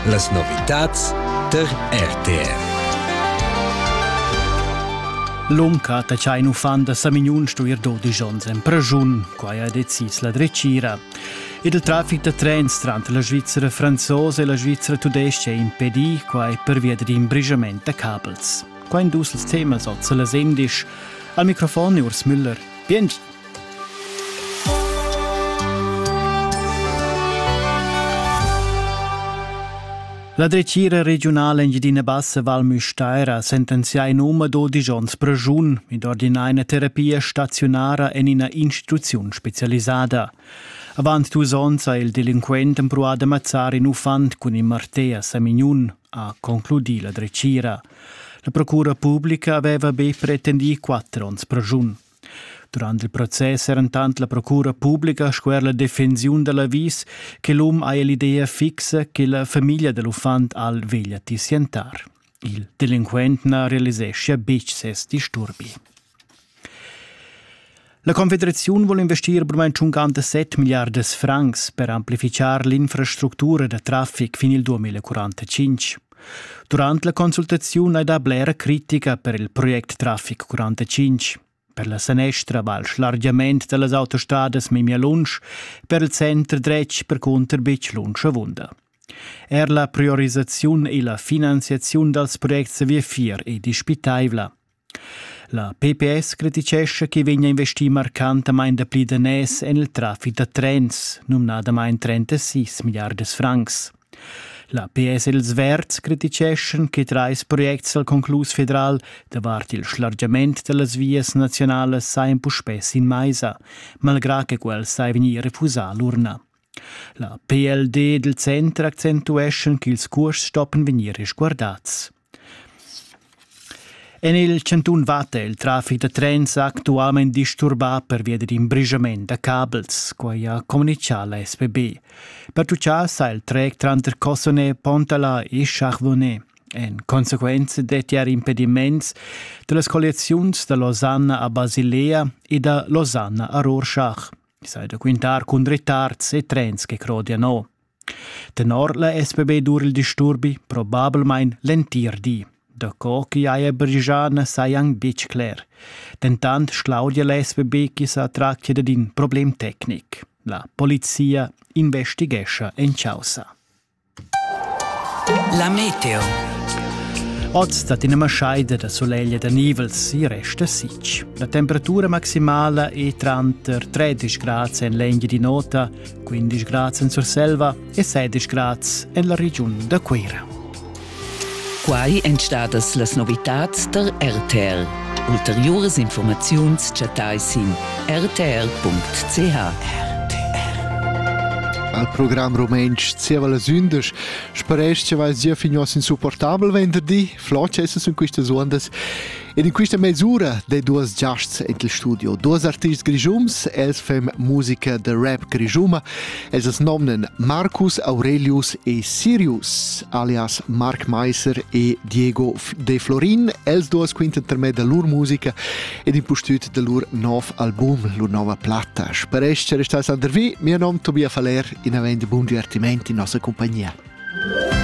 Las novitads tar RTR. L'onca ta c'ha in uffant da Samignun stuir dodisch onns en praschun, quai ha decis la dretgira. Ed il traffic da trens tranter la Svizzera franzosa e la Svizzera tudestga è impedì, quai pervia dad in brigiament da cabels. Qua in dus temas oz la sendisch. Al microfon Urs Müller. Bien La dretgira regiunala Engiadina Bassa Val Müstair ha sentenzià in um dodisch onns pregiun ed ordinà ina terapia staziunara en ina instituziun spezialisada. Avant dus onns ha il delinquent empruà da mazzar in uffant cun in martè a Samignun, ha concludì la dretgira. La procura publica aveva be pretendì quatter onns pregiun. Durant il process eran tant la procura publica sco er la defensiun da l'avis che l'um haja l'idea fixa che la famiglia da l'uffant al veglia tissientar. Il delinquent na realiseschia betg ses disturbi. La Confederaziun vul investir brumain 57 milliardas francs per amplifichar l'infrastructura da traffic fin il 2045. Durant la consultaziun hai dà blera critica per il project Traffic 45, per la sanestra val schlargiament da las autostadas memia lunsch, per il center dretg percunter betg lunsch avunda. Er la priorisaziun e la finanziaziun dals projects a viafier è dispitaivla. La PPS criticescha ch'i vegnia investì marcantamain dapli daners en il traffic da trens, numnadamain 36 milliardas francs. La PS e ils Verds criticeschan che trais projects al conclus federal davart il schlargiament da las vias naziunalas sajan puspè sin maisa, malgrà che quels sai vegnir refusà l'urna. La PLD dal center accentueschan ch'ils curs stoppan vegnir resguardads. En il chantun Vatta è il traffic da trens actualmain disturbà pervia dad in brischament da cabels, quai ha communitgà la SPB. Pertutgà sa il trec tranter Cossone, Pontala e Charvone. En consequenza detti er impediments da las colliaziuns da Losanna a Basilea e da Losanna a Rorschach. Sai da quintar cun retards e trens che crodian o. Tenor la SPB dur il disturbi probablmain l'entir di. Daco ch'i haja brigià na sajan betg cler. Dentant sclaudia la SPB ch'i sa tractia dad in problem tecnic. La polizia investighescha en chaussa. La meteo. Oz dat ina maschaida da soleglia da nivels, i resta sitg. La temperatura maximala è tranter 13 grad en l'eglia di nota 15 grads en Surselva e 16 grads en la regiun da Cuira. Quai èn stadas las novitads da RTL. Ulteriuras informaziuns chattai sin rtr.ch. Al program rumantsch zieva las undisch sparesch che vai zia fignuos insupportabel venderdi, flot essen sun quistas uondas Ed in quista mesura dai duos giasts in il studio. Duos artists grischums, els fem musica da rap grischuma. Els as nomnan Marcus Aurelius e Sirius, alias Marc Meiser e Diego De Florin. Els duos quintan per me da lur musica ed in pustüt da lur nov album, lur nova platta. Sparesch che restais andervi, mio nom Tobias Faller, in avend bun divertimenti in nossa compagnia.